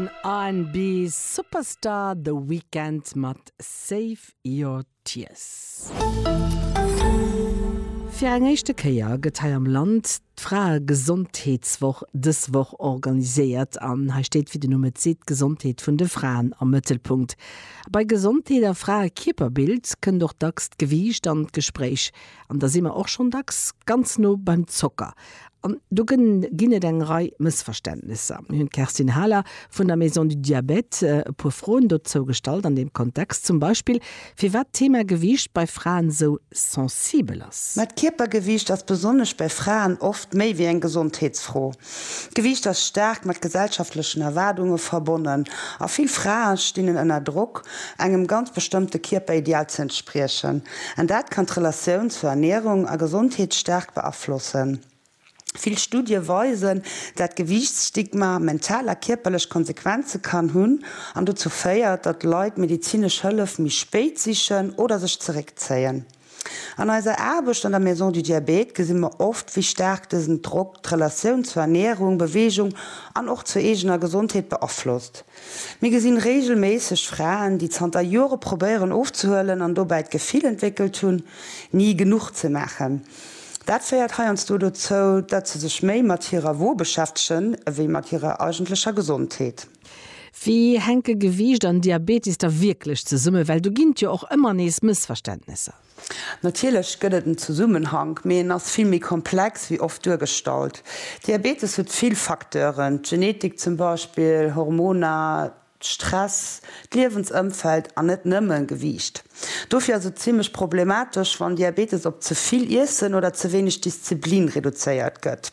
Den R&B Superstar The Weeknd mat Save Your Tears. Fir eng éischte Kéier gëtt hei am Land d'Fraegesondheetswoch dës Woch organiséiert. An hei steet, wéi den Numm et seet, d'Gesondheet vun de Fraen am Mëttelpunkt. A bei Gesondheet a Fraekierperbild kënnt och dacks d'Gewiicht an d'Gespréich. An da si mer och schonn dacks ganz no beim Zocker. An do ginn et eng Rei Mëssverständnesser. Mir hunn d'Kerstin Haler vun der Maison du Diabète e puer Froen dozou gestallt an deem Kontext, zum Beispill firwat d'Thema Gewiicht bei Fraen esou sensibel ass. Mä d'Kierpergewiicht ass besonnesch bei Fraen oft méi wéi eng Gesondheetsfro. D'Gewiicht ass staark mat gesellschaftlechen Erwaardunge verbonnen a vill Frae stinn en ënner Drock, engem ganz bestëmmte Kierperideal ze entspriechen. An dat kann d'Relatioun zur Ernärung a Gesondheet staark beaflossen. Vill Studie weisen, dat Gewiichtsstigma mental a kierperlech Konsequenze kann hunn an dozou féiert, datt Leit medezinesch Hëllef méi spéit sichen oder sech zeréckzéien. An eiser Aarbecht an der Maison du Diabète gesi mer oft, wéi staark dësen Drock d'Relatioun zur Ernärung, Beweegung an och zur eegener Gesondheet beaflosst. Mir gesinn regelméisseg Fraen, déi zanter Jore probéieren ofzehuelen an dobäi d'Gefill entwéckelt hunn, ni genuch ze maachen. Dat féiert heiansdo dozou, datt se sech méi mat hirer Wo beschäftegen ewéi mat hirer eigentlecher Gesondheet. Wéi hänke Gewiicht an Diabetes da wierklech zesummen? Well do ginn et jo och ëmmer nees Mëssverständnesser. Natierlech gëtt et en Zesummenhank, mee en ass vill méi komplex wéi oft duergestallt. Diabetes huet vill Facteuren, d'Genetik zum Beispill, Hormoner, Stress, d'Liewensëmfeld an net nëmmen Gewiicht. Dofir ass et zimmlech problematesch, wann Diabetes op ze vill Iessen oder ze wéineg Disziplin reduzéiert gëtt.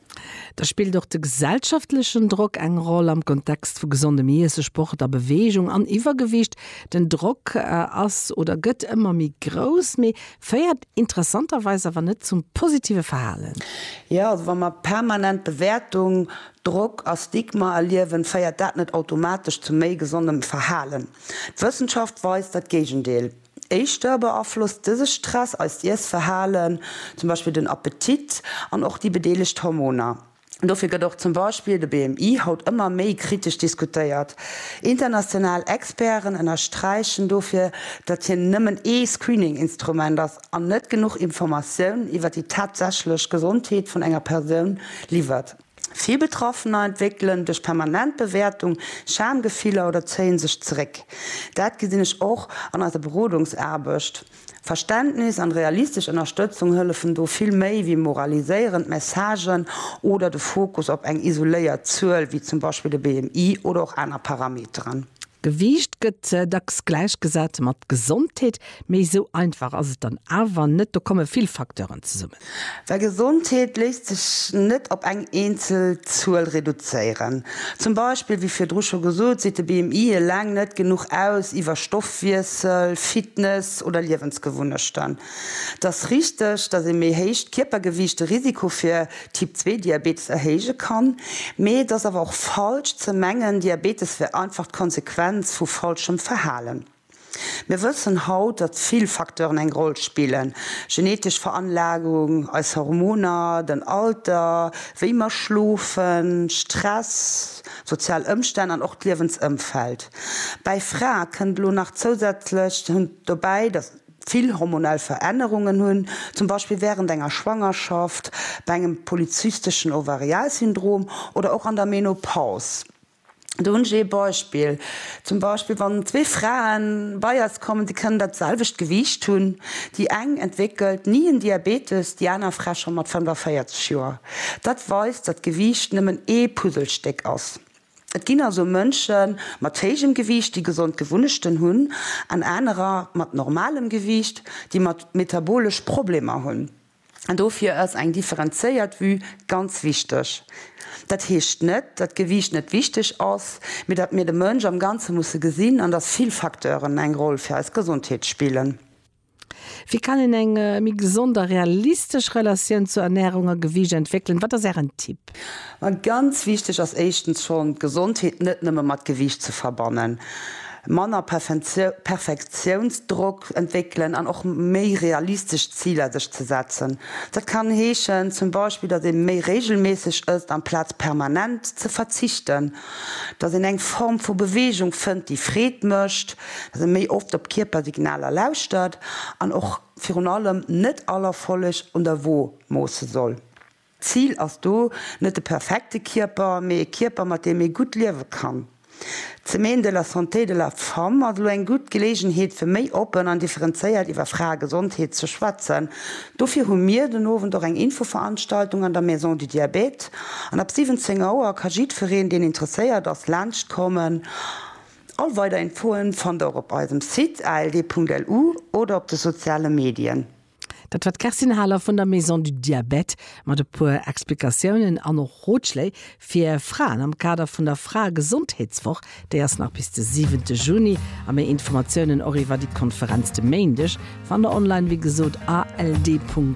Da spillt och de gesellschaftlechen Drock eng Roll am Kontext vu gesondem Iesse, Sport a Beweegung. An Iwwergewicht, den Drock ass oder gëtt ëmmer méi grouss, mee féiert interessanterweis awer net zum positive Verhalen. Jo, also wa mer permanent Bewäertung, Drock a Stigma erliewen, féiert dat net automatesch zu méi gesondem Verhalen. D'Wëssenschaft weist dat Géigendeel. Éischter beaflosst dëse Stress eist Iessverhalen, zum Beispill den Appetit, an och déi bedeelegt Hormoner. Dofir gëtt och zum Beispill de BMI haut ëmmer méi kritesch diskutéiert. International Experten ënnersträichen dofir, datt hien nëmmen ee Screening-Instrument ass an net genuch Informatioun iwwer déi tatsächlech Gesondheet vun enger Persoun liwwert. Vill Betraffener entwéckelen duerch permanent Bewäertung Schamgefiller oder zéie sech zeréck. Dat gesinn ech och an eiser Berodungsaarbecht. Verständnis an realistesch Ënnerstëtzung hëllefen do vill méi wéi moraliséierend Messagen oder de Fokus op eng isoléiert Zuel, wéi zum Beispill de BMI oder och aner Parameteren. Gewiicht gëtt dacks gläichgesat mat Gesondheet, mee esou einfach ass et dann awer net. Do komme vill Facteuren zesummen. Well Gesondheet léisst sech net op eng eenzel Zuel reduzéieren. Zum Beispill, wéi virdru scho gesot, seet de BMI eleng net genuch aus iwwer Stoffwiessel, Fitness oder Liewensgewunnechten. Et ass richteg, datt ee méi héicht Kierpergewiicht de Risiko fir Typ 2 Diabetes erhéije kann, mee et ass awer och falsch ze mengen, Diabetes wär einfach d'Konsequenz vu falschem Verhalen. Mir wëssen haut, datt vill Facteuren eng Roll spillen, genetesch Veranlagung, eis Hormoner, den Alter, wéi mer schlofen, Stress, sozial Ëmstänn an och d'Liewensëmfeld. Bäi Frae kënnt elo nach zousätzlech dobäi, datt. vill hormonell Verännerungen hunn, zum Beispill wärend enger Schwangerschaft, bei engem polyzysteschen Ovarialsyndrom oder och an der Menopaus. Do hunn ech ee Beispill, zum Beispill wann zwee Frae bei eis kommen, déi kënnen dat selwecht Gewiicht hunn, déi eng entwéckelt ni en Diabetes, déi aner Fra scho mat 45 Joer. Dat weist, datt d'Gewiicht nëmmen ee Puzzlestéck ass. Et ginn also Mënsche mat héijem Gewiicht, déi gesond Gewunnechten hunn, an anerer mat normalem Gewiicht, déi metabolesch Problemer hunn. An dofir ass eng differenzéiert Vue ganz wichteg. Dat heescht net, datt Gewiicht net wichteg ass, mee datt mir de Mënsch am Ganze musse gesinn an datt vill Facteuren eng Roll fir eis Gesondheet spillen. Wéi kann een eng méi gesond a realistesch Relatioun zu Ernärung a Gewiicht entwéckelen? Wat ass Ären Tipp? Ma ganz wichteg ass éischtens schonn, d'Gesondheet net nëmme mat Gewiicht ze verbannen. Manner Perfektiounsdrock entwéckelen an och méi realistesch Ziler sech ze setzen. Dat kann heeschen zum Beispill, datt ee méi reegelméisseg ësst amplaz permanent ze verzichten. dass een eng Form vu Beweegung fënnt, déi Freed mécht, dass ee méi oft op d'Kierpersignaler lauschtert an och virun allem net all Erfolleg un der Wo moosse soll. D'Zil ass do net de perfekte Kierper, mee e Kierper, mat deem ee gutt liewe kann. D'Semaine de la santé de la femme ass elo eng gutt Geleegenheet, fir méi oppen an differenzéiert iwwer Fraegesondheet ze schwätzen, Dofir hu mir den Owend och eng Infoveranstaltung an der Maison du Diabète an ab 17 Auer ka jiddfereen deen interesséiert ass laanscht kommen. All weider Infoen fannt der och op eisem Site ald.lu oder op de soziale Medien. Dat war d'Kerstin Haler vun der Maison du Diabète mat e puer Explikatiounen an och Rotschléi Fir Fraen am Kader vun der Fraegesondheetswoch, déi ass nach bis de siwente Juni, a méi Informatiounen och iwwer déi Konferenz de Méindeg fannt der online wéi gesot, ald.lu.